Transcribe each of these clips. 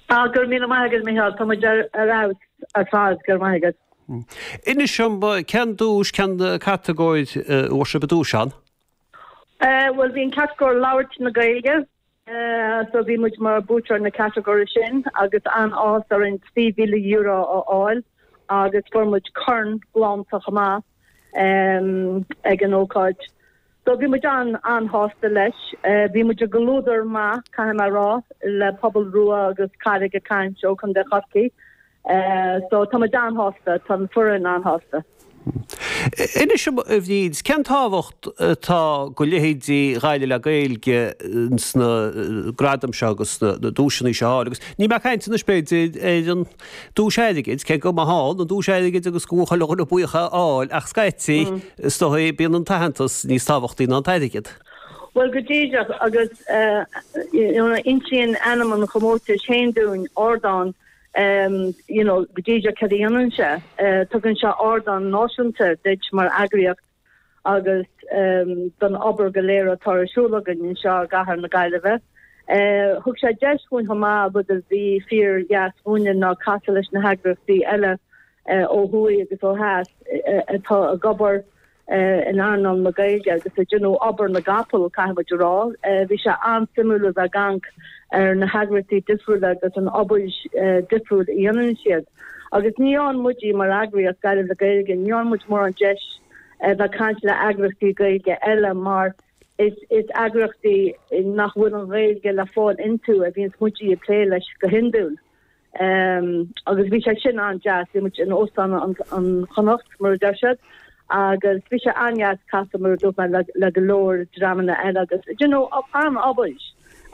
Ah, go raibh míle maith agat, Micheál. Tá muid ar fheabhas ar fad, go raibh maith agat. Inis dom, cén duais, cén catagóir inar bhuaigh sibh an duais ann? Eh, bhuel, bhí an chatagóir Labhairt na Gaeilge, eh, so bhí muid mar buaiteoirí na catagóire sin agus an-áthas orainn €3,000 a fháil agus fuair muid corn galánta chomh maith. ag an ócáid. So bhí muid an-sásta leis. Bhí muid i gcomhluadar maith, caithfidh mé a rá, le Pobal Rua agus Carraig ag Caint ó Chontae Chorcaí. So tá muid an-sásta, tá an foireann an-sásta. Inis dom, a Bhríd, cén tábhacht atá go leithéidí Ghaillimh le Gaeilge sna gradaim seo agus na duaiseanna seo a fháil agus níl mé ag caint anois, b'fhéidir, ar an. Duais airgid, cé go maith ann an duais airgid agus go bhfuil chuile dhuine buíoch é a fháil ach scaití is dóigh bíonn an t-aitheantas níos tábhachtaí ná an t-airgead. Bhuel, go díreach agus you know insíonn ainm an chomórtais féin dúinn, ardán you know go díreach cad a dhéanann sé, tugann sé ardán náisiúnta duit mar eagraíocht. agus don obair go léir atá ar siúl againn anseo i gcathair na Gaillimhe. Thug sé deis dhúinn chomh maith rud a bhí fíor dheas dhúinne ná casadh leis na heagraíochtaí eile ó thuaidh agus ó dheas atá ag obair in earnáil na Gaeilge agus ag déanamh obair na gcapall caithfidh mé a rá. Bhí sé an-suimiúil a bheith ag caint ar na heagraíochtaí difriúla agus an obair dhifriúil a dhéanann siad. Agus ní fhaigheann muide mar eagraíocht, Gaillimh le Gaeilge, ní fhaigheann muid mórán deis a bheith ag caint le heagraíochtaí Gaeilge eile mar is eagraíochtaí nach bhfuil an Ghaeilge le fáil iontu a bhíonns muide ag plé leis go hiondúil. Ehm, agus bhí sé sin an-deas, bhí muid in Óstán an Chonnacht, mar a deir siad, agus bhí sé an-deas casadh, mar a dúirt mé, le go leor dreamanna eile agus, do you know, an-obair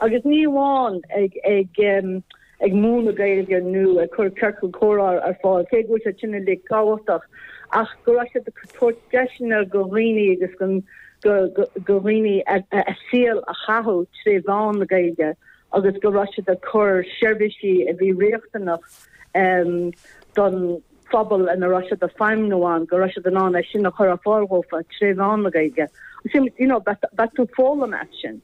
agus ní amháin ag, ag, ehm, ag múineadh Gaeilge nó ag cur ciorcal comhrá ar fáil, cé go bhfuil siad sin uilig tábhachtach, ach go raibh siad ag tabhairt deiseanna do dhaoine agus go, go, go dhaoine a saol a chaitheamh tré mheán na Gaeilge. agus go raibh siad ag cur seirbhísí a bhí riachtanach don phobal ina raibh siad ag feidhmniú ann, go raibh siad in ann é sin a chur ar fáil dhófa tré mheán na Gaeilge. You know, bíonn tú ag foghlaim as sin.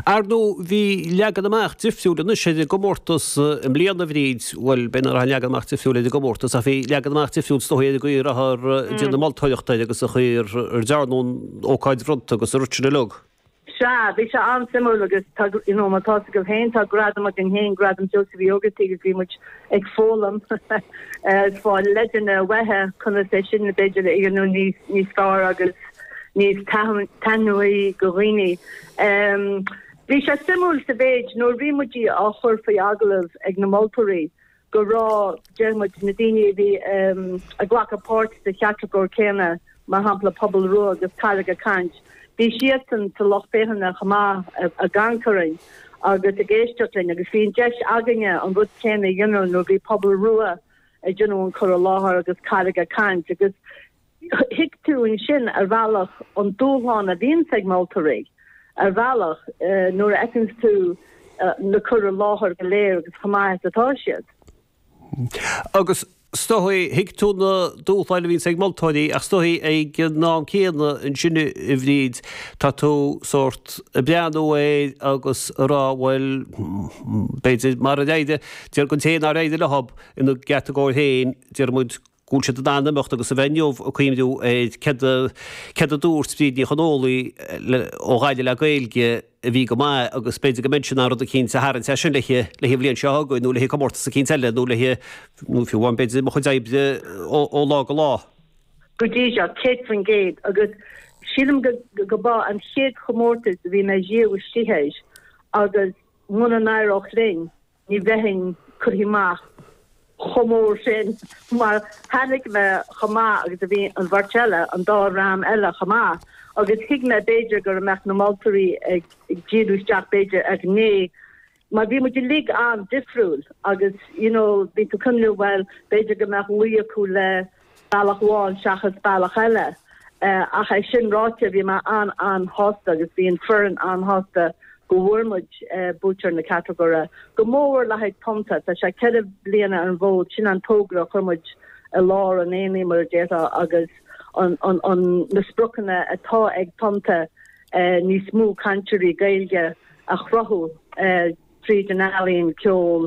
Ar ndóigh, bhí leagan amach difriúil anois ar an gcomórtas i mbliana, a Bhríd, bhuel, b'fhéidir nach raibh an leagan amach difriúil ar an gcomórtas ach bhí leagan amach difriúil is dóigh ar an gcaoi a rabhthar ag déanamh moltóireachta air agus an chaoi ar dearnadh an ócáid bhronnta agus an rud sin uilig. Sea, bhí sé an-suimiúil agus tá, you know, mar atá a fhios agat féin, tá gradam againn féin, Gradam Sheosaimh Uí Ógartaigh agus bhí muid ag foghlaim freisin leideanna maithe, conas é sin b'fhéidir a dhéanamh níos, níos fearr agus níos taitneamhaí go dhaoine. Ehm, bhí sé suimiúil sa mhéid nuair a bhí muid á chur faoi agallamh ag na moltóirí, go raibh déarfaidh muid na daoine a bhí ag glacadh páirt sa chatagóir céanna mar shampla Pobal Rua agus Carraig ag Caint bhí siadsan sa lucht féachana chomh maith ag breathnú orainn agus ag éisteacht linn agus bhí an deis againne an rud céanna a dhéanamh nuair a bhí Pobal Rua ag déanamh an cur i láthair agus Carraig ag Caint agus Thuig tú ansin, ar bhealach, an dúshlán a bhíonns ag moltóirí, ar bhealach, nuair a fheiceanns tú na cur i láthair go léir agus chomh maith is atá siad. Agus, is dóigh, thuig tú na dúshláin a bhíonns ag moltóirí ach is dóigh, ag an am céanna ansin, a Bhríd, tá tú sórt ag breathnú air agus ag rá, bhuel, b'fhéidir, mara n-éireadh, déarfainn féin nár éirigh leob ina gcatagóir féin, déarfainn, go bhfuil siad in ann imeacht agus a bheith ag cuimhniú ar céard a dúirt Bríd Ní Chonghólaí ó Ghaillimh le Gaeilge a bhí go maith agus b'fhéidir go mbeidh siad in ann rud eicínt a tharraingt as sin le an bhliain seo chugainn nó le comórtas eicínt eile nó le fiú amháin b'fhéidir mo chuid oibre ó lá go lá. Go dtí seo, 100%, agus sílim go mba é an chéad chomórtas a bhí mé riamh istigh air agus muna n-éireodh linn, Ní bheinn curtha amach chomh mór sin mar chonaic mé chomh maith agus a bhí an bheirt eile, an dá dhream eile chomh maith agus thuig mé b'fhéidir go mbeadh na moltóirí ag díriú isteach b'fhéidir ar ghné mar bhí muid uilig an-difriúil agus you know bhí tú ag cuimhniú bhuel b'fhéidir go mbeadh luí acu le bealach amháin seachas bealach eile. Ach é sin ráite, bhí mé an-an-shásta agus bhí an foireann an-shásta go bhfuair muid buaiteoir na catagóire. Go mór mór le haghaidh Tonnta, tá sé ceithre bliana ar an bhfód, sin an togra a chuir muid i lár an aonaigh, mar a déarfá, agus an na spriocanna atá ag Tonnta níos mó cainteoirí Gaeilge a chruthú tríd an ealaín, ceol,